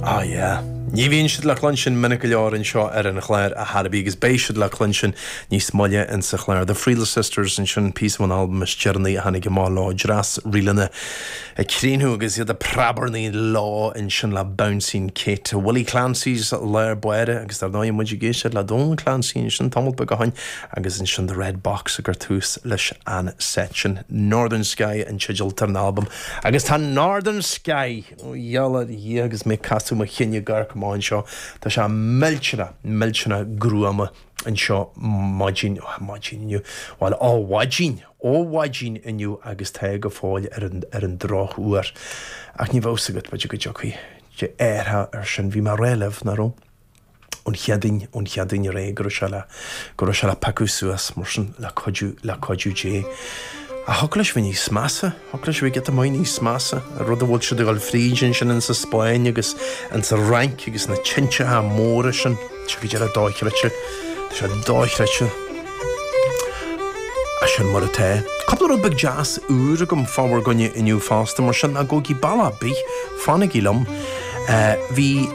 Ah yeah. Ní bhíonn siad le cluinstin minic go leor anseo ar an chlár a Harry B agus beidh siad le cluinstin níos moille in sa chlár. The Friel Sisters ansin píosa ón albam is deireanaí a tháinig amach leo, dreas ríleanna ag críochnú agus iad ag preabarnaí leo ansin le Bouncing Kate. Willie Clancy's Láir Bháire agus dar ndóigh muid ag éisteacht le Donal Clancy ansin tamall beag ó shin agus ansin The Red Box a chuir tús leis an set sin. Northern Sky an teideal atá ar an albam. Agus tá Northern Sky, ó de dhíth agus mé ag casadh mo chinn ag amharc amach anseo, tá sé millteanach, millteanach gruama anseo maidin, ar maidin inniu, bhuel ó mhaidin, ó mhaidin inniu agus tá go fóill ar an, ar an drochuair. Ach ní bheidh fhios agat, b'fhéidir go dtiocfaidh. deireadh air sin, bhí mé a' rá libh, nach raibh? ón Chéadaoin, ón Chéadaoin ar aghaidh, go raibh sé le, go raibh sé le piocadh suas mar sin le cuidiú, le cuidiú Dé. Ach thiocfadh leis a bheith níos measa, thiocfadh leis a bheith giota maith níos measa, rud a bhfuil siad ag dul fríd ansin insa Spáinn agus insa Fhrainc agus na teinteacha móra sin. Tá sé go díreach dochreidte, tá sé dochreidte. Sin mar atá. Cúpla rud beag deas úr agam fá bhur gcoinne inniu fosta, mar sin ná gabhaigí ball ar bith, fanaigí liom. Bhí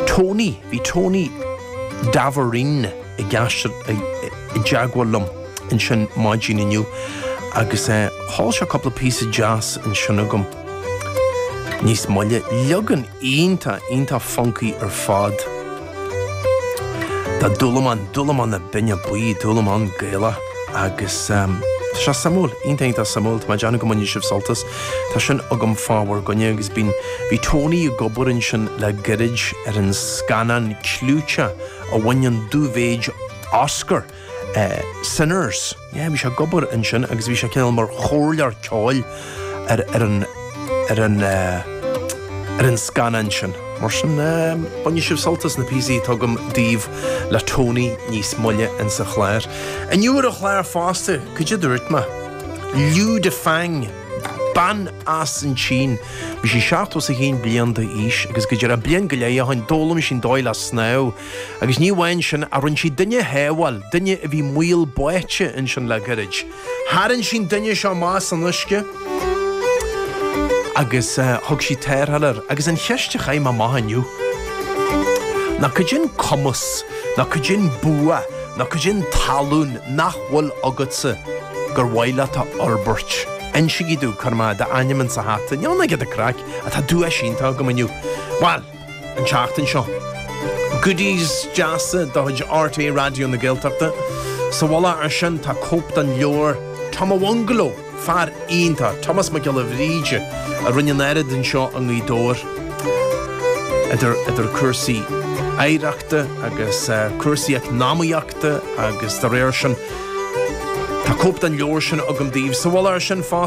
Tony, bhí Tony Davoren i dteagmháil liom ansin maidin inniu agus sheol sé cúpla píosa deas ansin agam níos moille. Leagan iontach, iontach funcaí ar fad. Tá Dúlamán, Dúlamán na Binne Buí, Dúlamán Gaelach agus tá sé suimiúil, iontach iontach suimiúil. Tá mé ag déanamh go mbainfidh sibh sult as. Tá sin agam fá bhur gcoinne agus bíonn, bhí Tony ag obair ansin le gairid ar an scannán clúite a bhain an dú mhéid Oscar. Sinners. Yeah, bhí sé ag obair ansin agus bhí sé cineál mar chomhairleoir ceoil ar, ar an, ar an, ar an scannán sin. Mar sin, bainfidh sibh sult as na píosaí atá agam daoibh le Tony níos moille insa chlár. Inniu ar an chlár fosta, cad é a dúirt mé, Liu Dafang, bean as an tSín. Bhí sí 71 bliain d'aois agus go díreach bliain go leith ó shin d'fhoghlaim sí an dóigh le snámh. Agus ní amháin sin, ach rinne sí duine a shábháil, duine a bhí mór báite ansin le gairid. Tharraing sí'n duine seo amach as an uisce agus thug sí tarrtháil air. Agus an cheist a chaith mé amach inniu ná cad é an cumas, nó cad é an bua, nó cad é an tallann nach bhfuil agatsa gur mhaith leat a fhorbairt? Insigí dom, cuirfidh mé d'ainm insa hata. Níl ann ach giota craic, ach tá duais iontach agam inniu. Bhuel! an tseachtain seo. Goodies deasa de chuid RTÉ Raidió na Gaeltachta. Sa mhullach ar sin tá cóip den leabhar Tom an Bhungaló, fear iontach, Tomás Mac Giolla Bhríde a rinne an oiread anseo i nGaoth Dobhair idir cúrsaí oidhreachta agus cúrsaí eacnamaíochta agus dá réir sin. Tá cóip den leabhar sin agam daoibh. Sa mhullach ar sin fosta.